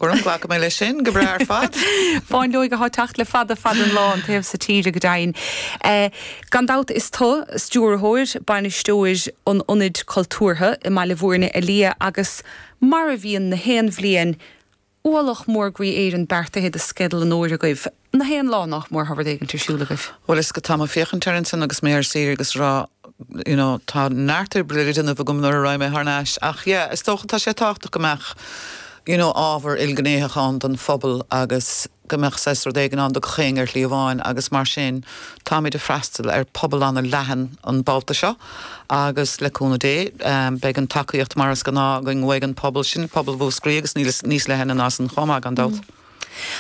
Go raibh, glacfaidh mé leis sin go breá ar fad. Fáinleog athá teacht le fada fad an lá an taobh so tíre go deimhin. Gan dabht is tu stiúrthóir, bainisteoir an ionaid cultúrtha i mBaile Mhúirne a Liadh agus mar a bhíonn na haon bhliain, ualach mór groí Éireann beartaithe do sceideal an fhómhair agaibh. Na haon lá nách mór tá rud éigint ar siúl agaibh? Bhuel is go tá mé féachaint air ansin agus mé ar saoire agus rá you know tá neart oibre le déanamh agam nuair a raghaidh mé thar n-ais ach yeah is dócha tá sé tábhachtach go mbeadh you know ábhar ilghnéitheach ann don phobal agus go mbeadh saghas rud éigin ann do gach aon ar shlí amháin agus mar sin táimid a' freastal ar pobal ana leathan an babhta seo agus le cúnamh Dé ehm, beidh an tacaíocht mar is gnáth againn uaidh an pobal sin, pobal Mhúscraí agus níl is níos leithne ná san chomh maith gan dabht.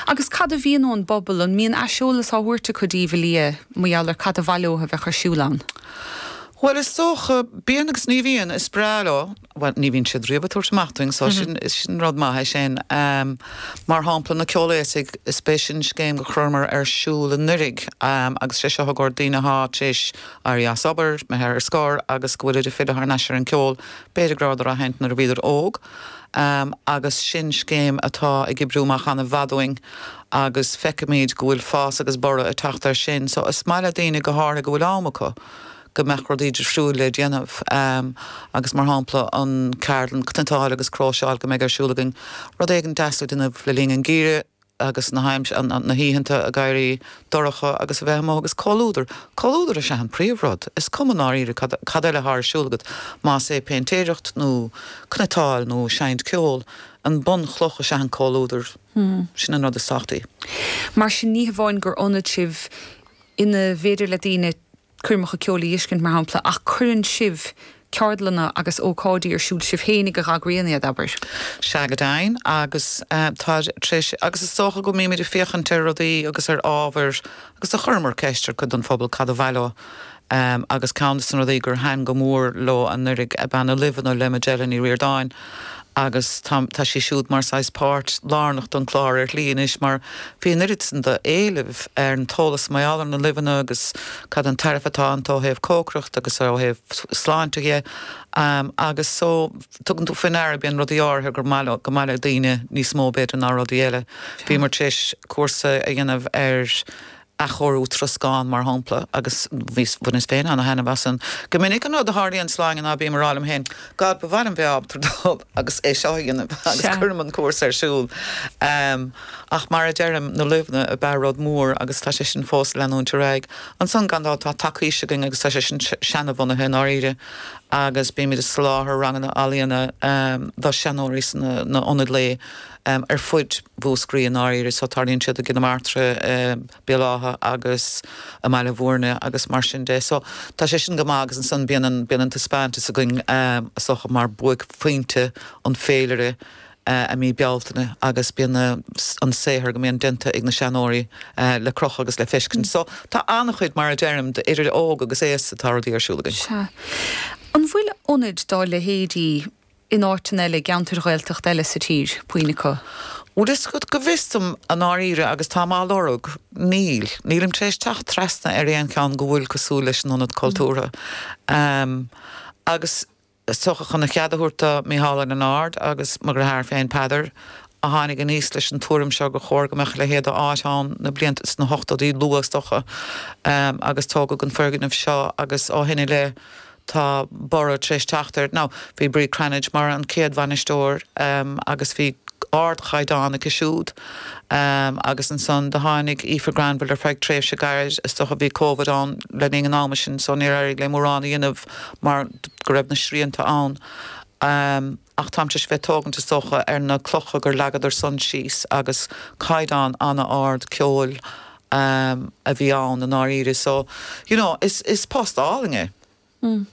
Agus cad a bhíonn ón bpobal? An mbíonn aiseolas á thabhairt acu daoibh a Liadh mar gheall ar cad ba mhaith leothu a bheadh ar siúl ann? Bhuel, is dócha, bíonn agus ní bhíonn. Is breá leo, bhuel, ní bhíonn siad riamh ag tabhairt amach dúinn so sin, sin rud maith é sin. Mar shampla, na Ceol Aosaigh, is b'shin scéim go chuireamar ar siúl anuraidh agus sé seo i gcomhair daoine athá tar éis éirí as obair, imithe ar scor agus go bhfuilid ag filleadh thar n-ais ar an gceol, b'fhéidir go rabhadar á sheinnt nuair a bhíodar óg. agus sin scéim atá ag oibriú amach ana mhaith dúinn agus feicimid go bhfuil fás agus borradh ag teacht ar sin. So is maith le daoine go háirithe go bhfuil am acu go mbeadh rudaí difriúil le déanamh agus mar shampla an ceardlann cniotáil agus cróiseáil go mbeidh ar siúl againn rud éigin deas le déanamh le linn an gheimhridh. agus na haimsire, na hoícheanta ag éirí dorcha agus a bheith amuigh agus comhluadar, comhluadar is ea an príomhrud, is cuma i ndáiríre cad, cad eile atá ar siúl agat, más é péintéireacht nó cniotáil nó seinnt ceoil, an bunchloch is ea an comhluadar, sin an rud is tábhachtaí. Mar sin ní hamháin gur ionad sibh ina bhféidir le daoine coirmeacha ceoil a dh'fheiscint mar shampla, ach cuireann sibh ceardlanna agus ócáidí ar siúl sibh féinig a dh'eagraíonn iad, abair. Sea, go deimhin, agus tá tar éis, agus is dócha go mbímid ag féachaint ar rudaí agus ar ábhair agus do chuireamar ceist ar cuid den phobal cad ba mhaith leo agus ceann des na rudaí gur thaitin go mór leo anuraidh ab ea na luibheanna le Majella Ní Ríordáin. Agus tá, tá sí siúd mar saghas páirt lárnach don clár ar shlí anois mar bhí an oiread san do éileamh ar an t-eolas mar gheall ar na luibheanna agus cad an tairbhe atá iontu ó thaobh cócaireacht agus ó thaobh sláinte dhe agus so tugann tú faoi ndeara go mbíonn rudaí áirithe gur maith leo, go maith le daoine níos mó b'fhéidir ná rudaí eile. Bhíomar tar éis cúrsa a dhéanamh ar. athchóiriú troscán, mar shampla, agus bhaineas féin an-thaitneamh as an. Go minic, an rud a tharlaíonn, Sláine, ná bím a rá liom féin, God, ba mhaith liom bheith ábalta dul agus é seo a dhéanamh agus cuirim an cúrsa ar siúl. Ach mar a deirim, na luibheanna ab ea rud mór agus tá sé sin fós ag leanúint ar aghaidh. Ansan, gan dabht, tá tacaois againn agus tá sé sin seana-bhunaithe, i ndáiríre, agus bímid ag soláthar ranganna ealaíona do sheanóirí sna ionaid lae. ar fuid Mhúscraí i ndáiríre so tarlaíonn siad i gCill na Martra, i mBéal Átha agus i mBaile Mhúirne agus mar sin de. So tá sé sin go maith agus ansan bíonn an, bíonn an taispeáintas againn so mar buaic phointe an féilire i mí Bealtaine agus bíonn an saothar go mbíonn déanta ag na seanóirí ar crochadh agus le feiscint. So tá an-chuid mar a deirim d'idir óg agus aosta tá rudaí ar siúl againn. Sea. An bhfuil ionaid dá leithéidí in áiteanna eile, i gceantair Ghaeltachta eile sa tír, puinn acu. Bhfuil 'fhios agat, go bhfios dom i ndáiríre agus táim á lorg, níl. Nílim tar éis teacht trasna ar aon cheann go bhfuil cosúil leis an Ionad Cultúrtha. Agus is dócha chun a chead a thabhairt do Micheál Ó Lionáird agus mo dhreatháir féin Peadar a tháinig aníos leis an tuairim seo gur chóir go mbeadh a leithéid de áit ann na blianta sna hochtódaí luatha is dócha agus tógadh an foirgneamh seo agus ó shin i leith Tá borradh tar éis teacht air. Now, bhí Bríd Cranitch mar an chéad bhainisteoir agus bhí ardchaighdeán aici siúd agus ansan do tháinig Aoife Granville ar feadh tréimhse gairid, is dócha bhí Covid ann le linn an ama sin so níor éirigh léi mórán a dhéanamh mar go raibh na srianta ann. Ach táimse ag tógaint is dócha ar na clocha gur leagadar-san síos agus caighdeán an-ard ceoil a bhí ann i ndáiríre so you know is is post álainn é. Mm.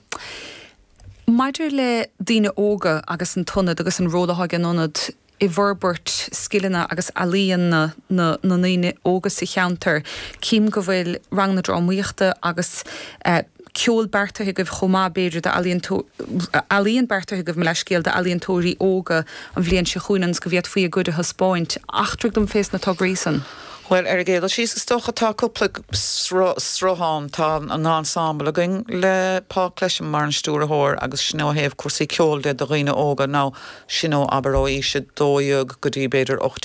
Maidir le daoine óga agus an t-ionad agus an ról atá ag an ionad i bhforbairt scileanna agus ealaíon na na na ndaoine óga sa cheantar, cím go bhfuil ranganna drámaíochta agus eh, ceol beartaithe agaibh chomh maith, b'fhéidir, ealaíon beartaithe agaibh, mo leathscéal, d'ealaíontóirí óga an bhliain seo chugainn ionas go bhféadfaí a gcuid a thaispeáint. Eachtraigh dom fé sna tograí san. Bhuel, ar an gcéad dul síos, is dócha, tá cúpla sruth ann. Tá an ensemble againn le Paul Clesham mar an stiúrthóir agus sin ó thaobh cúrsaí ceoil de do dhaoine óga, now, sin ó, abair, ó aois a dó dhéag go dtí, b'fhéidir, ocht